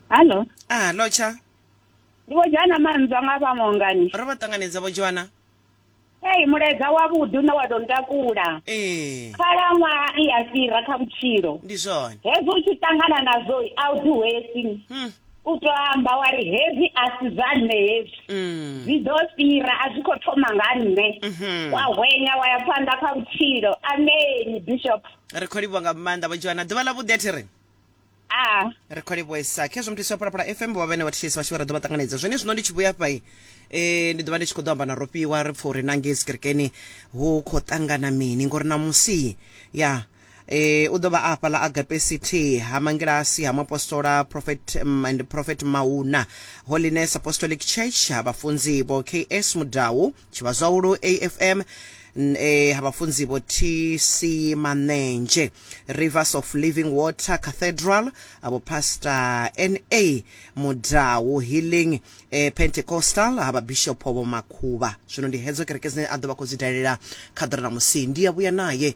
hallo a lotsha ndi vho dzhana manzwa nga vha mongani ro vha ṱanganedza vho dzhwana ei mulaedza wavhuḓi une wa tou ntakula ee khalaṅwaha i a fhira kha vhutshilo ndi zwone hezwi u tshi ṱangana nazwo a u ḓi hwesi Hmm. u tou amba wa ri hezwi a si zwa nṋe hezwi Mm. zwi ḓo fhira a zwi khou thoma nga nṋe Mhm. wa hwenya wa ya phanḓa kha vhutshilo ameni bishop ri khou livhuwa nga maanḓa vho joana ḓuvha ḽa vhuḓi a thi ri a ri khou livhuesa khezwo muthu isi wa phalaphala fm vho vhene vha thitshisi vhashu vha ra ḓo vha ṱanganedza zwone zwino ndi tshi vhuya fha eh ndi ḓo vha ndi tshi khou ḓo amba na rofhiwa ri pfa uri na ngei tsikerekeni hu khou ṱangana mini ngori na musi ya eh u ḓo vha a fhaḽa agape city ha mangilasi ha muapostola prophet um, and prophet mauna holiness apostolic church ha vhafunzi vho ks mudau chivazwaulu afm eh, abafunzi bo-tc manenje rivers of living water cathedral abopastor na mudau healing eh, pentecostal ababishop bomakhuba zwino ndi hedzo kereke dzine a ḓo vha khou dzi dalela kha ḓora na musi ndi ya vhuya naye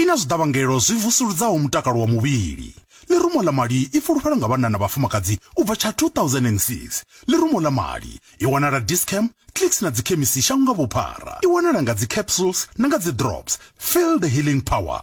I na zwiḓavhangelo zwi vusuludzaho mutakalo wa muvhili. Ḽirumo ḽa mali i fulufhelwa nga vhanna na vhafumakadzi u bva tsha 2006. Ḽirumo ḽa mali i wanala Dis-Chem, Clicks na dzikhemisi shango nga vhuphara. I wanala nga dzi capsules na nga dzi drops. Feel the healing power.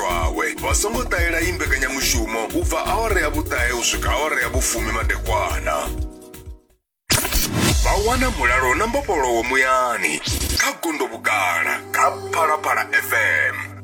lwawe. Vha songo ṱahela iyi mbekanyamushumo u bva awara ya vhuṱahe u swika awara ya vhufumi madekwana. Vha wana mulalo na mbofholowo muyani kha gondo vhugala kha Phalaphala FM.